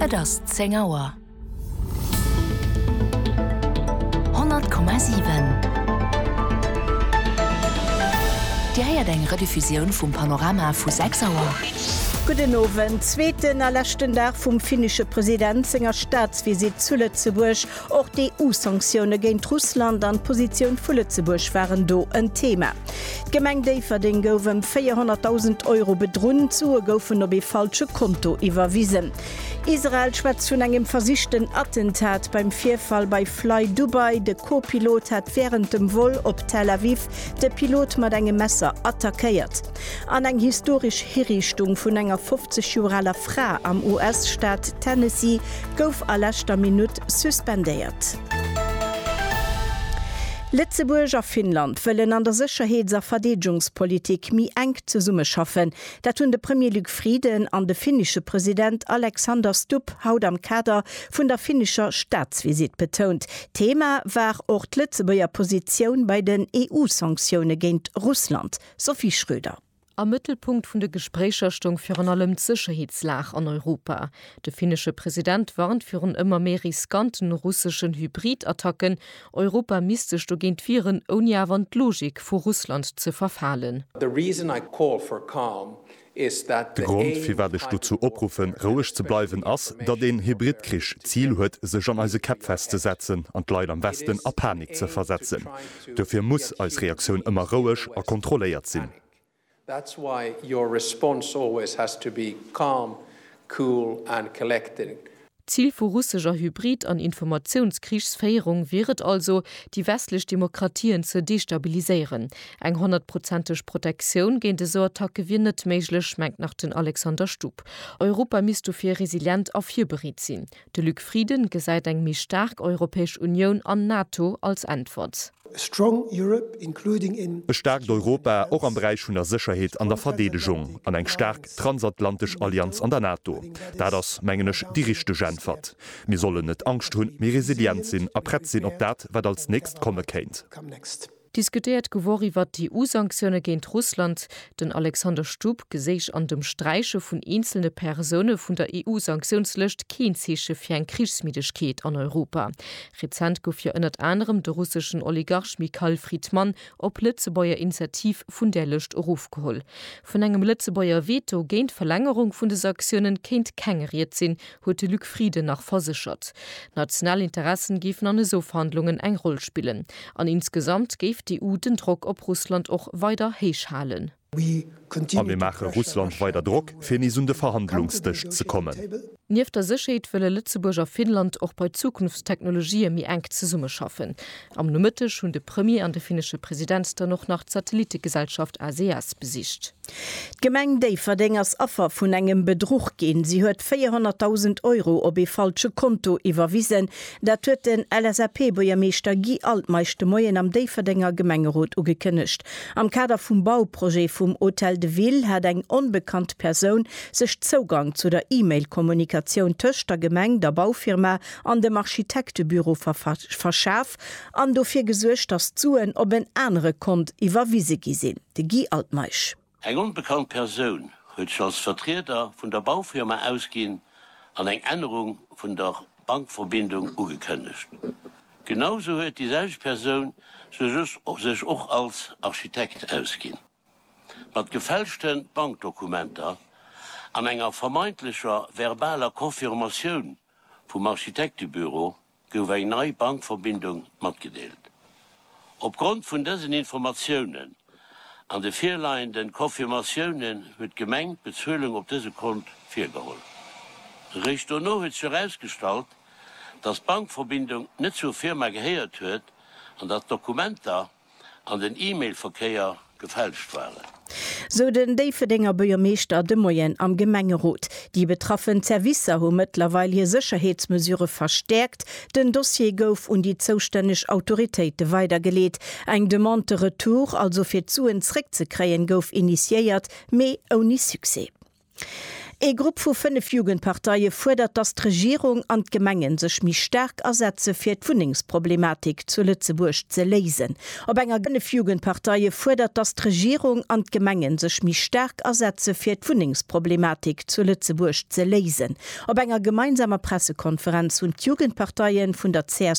Et ass zéng Auer. 100,7 Dir héiert eng Rediffusioun vum Panorama vu 6 Auer. Gudden Owend. Zweeten a leschten Dag vum finnesche President senger Staatsvisitt zu Lëtzebuerg. Och d'EU-Sanktioune géint Russland an d'Positioun vu Lëtzebuerg waren do en Thema. D'Gemeng Déifferdeng gouf ëm 400.000 Euro bedrunn, d'Sue goufen op ee falsche Konto iwwerwisen. Israel schwätzt vun engem versichten Attentat beim Virfall bei FlyDubai, de Co-Pilot hat wärend dem Vol op Tel Aviv de Pilot mat engem Messer attackéiert. An eng historesch Hiriichtung vun enger 50 Joer aler Fra am US-Staat Tennessee gouf a leschter Minutt suspendéiert. Lëtzebuerg a Finnland wëllen an der Sécherheets a Verdeedegungspolitik méi enk zesummeschaffen. Dat hunn de Premier Luc Frieden an de finnesche President Alexander Stubb haut am Kader vun der finnescher Staatsvisitt betount. Thema war och d'Lëtzebuerger Positioun bei den EU-Sanktioune géint Russland. Sophie Schröder. Am Mëttelpunkt vun de Gespréicher stoung virun allem d'Sécherheetslag an Europa. De finnesche President warnt virun ëmmer méi riskanten russeschen Hybridattacken. Europa misst sech dogéint wieren, ouni awer an d'Logik vu Russland ze verfalen. De Grond, firwat ech dozou opruffen, roueg ze bleiwen, ass, datt een Hybridkrich d'Zil huet, sech an eise Käpp festzesetzen an d'Leit am Westen a Panik ze versetzen. Dofir muss eis Reaktioun ëmmer roueg a kontrolléiert sinn. D'Zil vu russescher Hybrid an Informatiounskriegsféierung wier et also, déi westlech Demokratien ze destabiliséieren. Eng honnertprozenteg Protektioun géint esou Attacke wier net méiglech, mengt nach den Alexander Stupp. Europa misst dofir resilient a virbereet sinn. De Luc Frieden gesäit eng méi staark Europäesch Unioun an NATO als Äntwert. E staarkt Europa, och am Beräich vun der Sécherheet an der Verdeedegung, an eng staark Transatlantesch Allianz an der NATO, dat ass, mengen ech, déi richteg Äntwert. Mir sollen net Angscht hunn, mee resilient sinn a prett sinn op dat, wat als nächst komme kéint. Diskutéiert gouf och iwwert d'EU-Sanktioune géint Russland. Den Alexander Stubb geséich an dem Sträiche vun eenzelne Persoune vun der EU-Sanktiounslëscht keen Zeeche fir eng Krichsmiddegkeet an Europa. Rezent gouf jo ënnert anerem de russeschen Oligarch Mikhail Fridman op Lëtzebuerger Initiativ vun där Lëscht erofgeholl. Vun engem Lëtzebuerger Veto géint d'Verlängerung vun de Sanktiounen kéint keng Ried sinn, huet de Luc Frieden nach verséchert. National Interessen géifen an esou Verhandlungen eng Roll spillen. An insgesamt géif d'EU den Drock op Russland och weider héich halen. A mir maache Russland weider Drock, fir nees un de Verhandlungsdësch ze kommen. Nieft der Sécherheet wëlle Lëtzebuerg a Finnland och bei Zukunftstechnologië méi enk zesummeschaffen. Am Nomëtteg hunn de Premier an de finnesche President dann och nach d'Satellittegesellschaft ACS besicht. D'Gemeng Déifferdeng ass Affer vun engem Bedruch ginn. Si huet 400.000 Euro op ee falsche Konto iwwerwisen. Dat huet den LSAP-Buergermeeschter Guy Altmeisch de Moien am Déifferdenger Gemengerot ugekënnegt. Am Kader vum Bauprojet vum Hôtel de Ville hat eng onbekannt Persoun sech Zougang zu der E-Mail-Kommunikatioun tëscht der Gemeng, der Baufirma an dem Architektebüro verschaf an dofir gesuergt, datt d'Suen op en anere Kont iwwerwise gi sinn. De Guy Altmeisch. Eng onbekannt Persoun huet sech als Vertrieder vun der Baufirma ausginn an eng Ännerung vun der Bankverbindung ugekënnegt. Genau sou huet déi selwecht Persoun sech och als Architekt ausginn. Mat gefälschte Bankdokumenter an enger vermeintlecher verbaler Confirmatioun vum Architektebüro gouf eng nei Bankverbindung matgedeelt. Opgrond vun dësen Informatiounen an de virleienden Confirmatiounen huet d'Gemeng d'Bezuelung op dëse Kont virgeholl. Réischt dono huet sech erausgestallt, datt d'Bankverbindung net zur Firma gehéiert huet an datt d'Dokumenter, an den E-Mail-Verkéier gefälscht waren. Sou den Déifferdenger Buergermeeschter de Moien am Gemengerot. Déi betraffen Servicer hu mëttlerweil hir Sécherheetsmesure verstäerkt. Den Dossier gouf un déi zoustänneg Autoritéite weidergeleet. Eng Demande de retour, also fir d'Suen zréckzekréien, gouf initiéiert, mee ouni Succès. Ee Grupp vu fënnef Jugendparteie fuerdert, datt d'Regierung an d'Gemenge sech méi staark asetze fir d'Wunnengsproblematik zu Lëtzebuerg ze léisen. Op enger Fënnef Jugendparteie fuerdert, datt d'Regierung an d'Gemenge sech méi staark asetze fir d'Wunnengsproblematik zu Lëtzebuerg ze léisen. Op enger gemeinsamer Pressekonferenz hunn d'Jugendparteie vun der csv,